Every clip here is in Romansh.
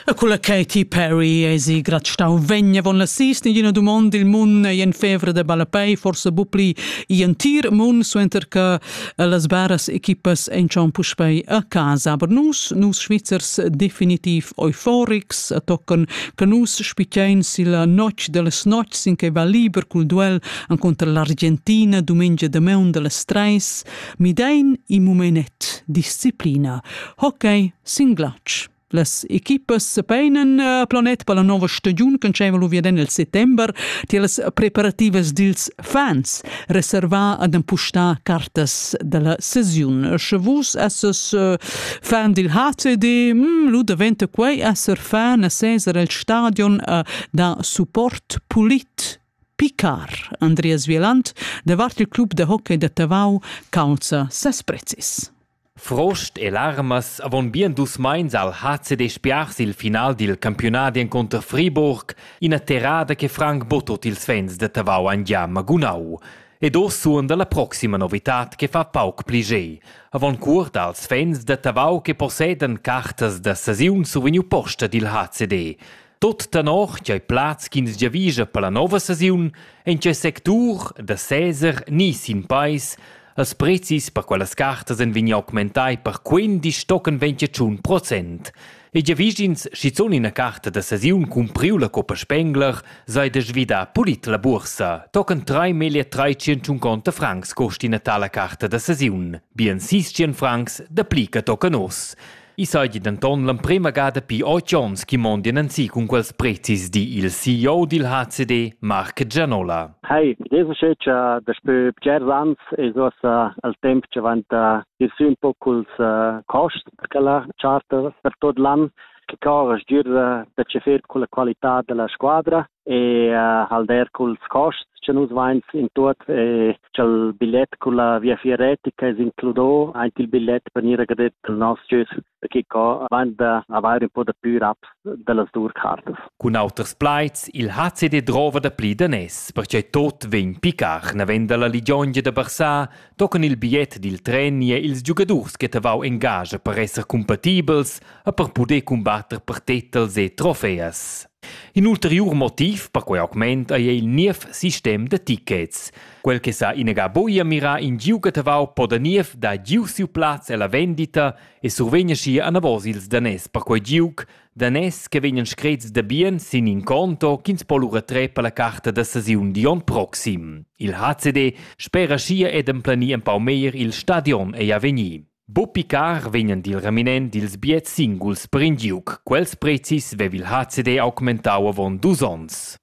E culla Katy Perry esi grat stau vegna von la sis in ina dumond il mun e en fevra de ballapei forse bupli i entir mun suenter che las baras equipas en schon puspei a casa aber nus nus Schweizers definitiv euforics tocken che nus spicein silla notg delles notgs in che va liber cul duel contro l'Argentina domenica de meun delles treis mi dein i momenet disciplina Hockey sin glatsch. Las equipas sepeinen eh, planet per la nova stagiun che diceva lu via nel settember tilas preparativas dils fans reservà ad empustar cartas della sesiun. Sche vus esses eh, fan dil HCD, mm, lu daventa quei esser fan a Cesar el stadion eh, da support pulit Picard Andreas Wieland davart il club de hockey de Tavau calza ses prezis. Frost e larmas avon bien dus meins ha il HCD spiars il final dil campiunadi encunter Friburg, ina terrada che franc buca tut ils fans da Tavau han gia magunau. Ed oz suonda la proxima novitad che fa pauc pli ge. Avon cuort als fans da Tavau che possedan cartas da sesiun survegniu posta dil HCD. Tut tenor ch'ei plaz ch'ins giavischa per la nova stagiun en quei sectur da seser ni sin peis, els prezis per quellas cartas ein vegni augmentai per quindisch tochen ventgatschun procent. E giavischins schizun ina carta da stagiun cumpriu la Coppa Spengler sei da svidar pulit la bursa. Tochen 3.350 francs cost ina tala carta da stagiun, bien 600 francs da pli che tochen oz. I seigi denton l'emprema gada pi oz onns che mondien ensi cun quels prezis, di il CEO dil HCD, Marc Gianola. Hi, research uh, daspö bgers ans es uossa al temp che vanta ir sü un po culs uh, costs per la charter per tot l'an che corre giür da tscheffer con la qualità della squadra e uh, hal der culs costs che nus vains in tuot e ch'el bilet culla viafier retica es includo aint il bilet per gnir agradet al nos jös perché co vain da avair un po da plü raps dellas dur cartas. Cun auters plaids, il HCD drova da pli danès, perche tot vegn picar navend alla ligiongia da Barça, tocan il biet dil tren e ils giugadurs che tavau engagia per esser compatibels e per puder combatter per titels e trofeas. In ulteriur motiv per quei augment ei il niev sistem da tickets. Quel che sa inagà buca mirar in giu che tavau po da niev dar giu siu plaz ella vendita e survegn schi anavos ils daners per quei giug, daners che vegnan screts da bien sin in conto ch'ins po lura trer per la carta da sesiun di onn proxim. Il HCD spera schi ed emplenir empau meglier il stadion ei a vegnir. Buca picar vegnan dil reminent dils biars singuls per in giug. Quels prezis veva il HCD augmentau avon dus onns.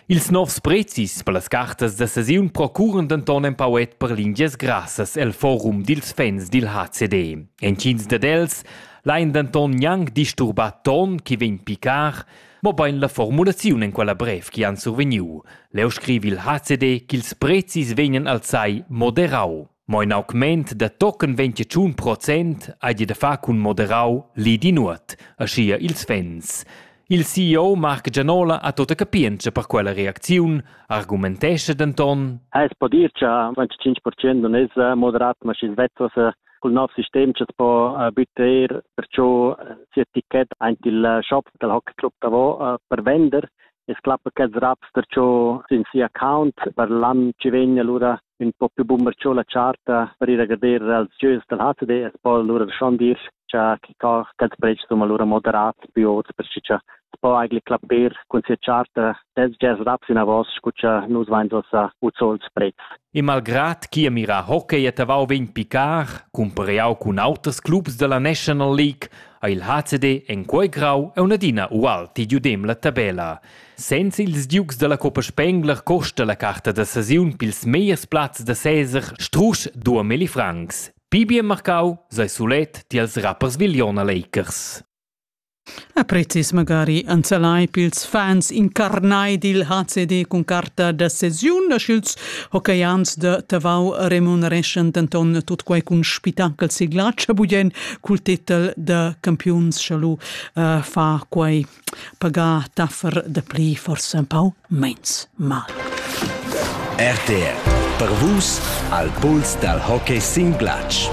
Ils novs prezis per las cartas da sesiun procuran denton empauet per lingias grassas el forum dils fans dil HCD. Entgins dad els lain denton gnanc disturbar ton chi vegn picar, mobein la formulaziun en quella brev chi han survegniu. Leu scrivi il HCD ch'ils prezis vegnan alzai moderau. Mo in augment da tochen 21 procent hai di da far cun moderau lì di nuot, aschia ils fans. Il CEO Marc Gianola ha tota capientscha per quella reacziun, argumentescha denton: Es po dir cha 25% non es moderat, ma schi svezzas cul nov sistem cha's po bütteir perciò sia ticket aint il shop dal hockey club davo per vender. Es clappa ch'els raps perciò sün sia account per l'an chi vegn, alura ün po più bun cho la charta per ir a gader als gieus dal HCD es po lura da schon dir cha chi ca quels pretschs sun lura moderats più ots per chi cha po eigentlich clapper cun sia charta dels jazz raps inavos scu cha nus vains ossa uzols pretz. E malgrat chi a mira hockey et avau vegn picar, cumpareau cun auters clubs dalla National League, ha il HCD en quei grau e unadina ual ti giudem la tabella. Senza ils giugs dalla Coppa Spengler costa la carta da sesiun pils megliers plazs da seser strusch duamilli francs. Pli bien marcau sei sulet tiels rappers Viliona Lakers. A prezis magari anzelai pils fans incarnai dil HCD cun carta da sesiun, sch'ils hockeyians de Tavau remunereschan denton tut quei cun spitacel siglatsch bugen cul titel de campiuns, sche lu uh, fa quei pagar daffer da pli forsa un pau meins mal. RTR per vus al puls dal hockey sin glatsch.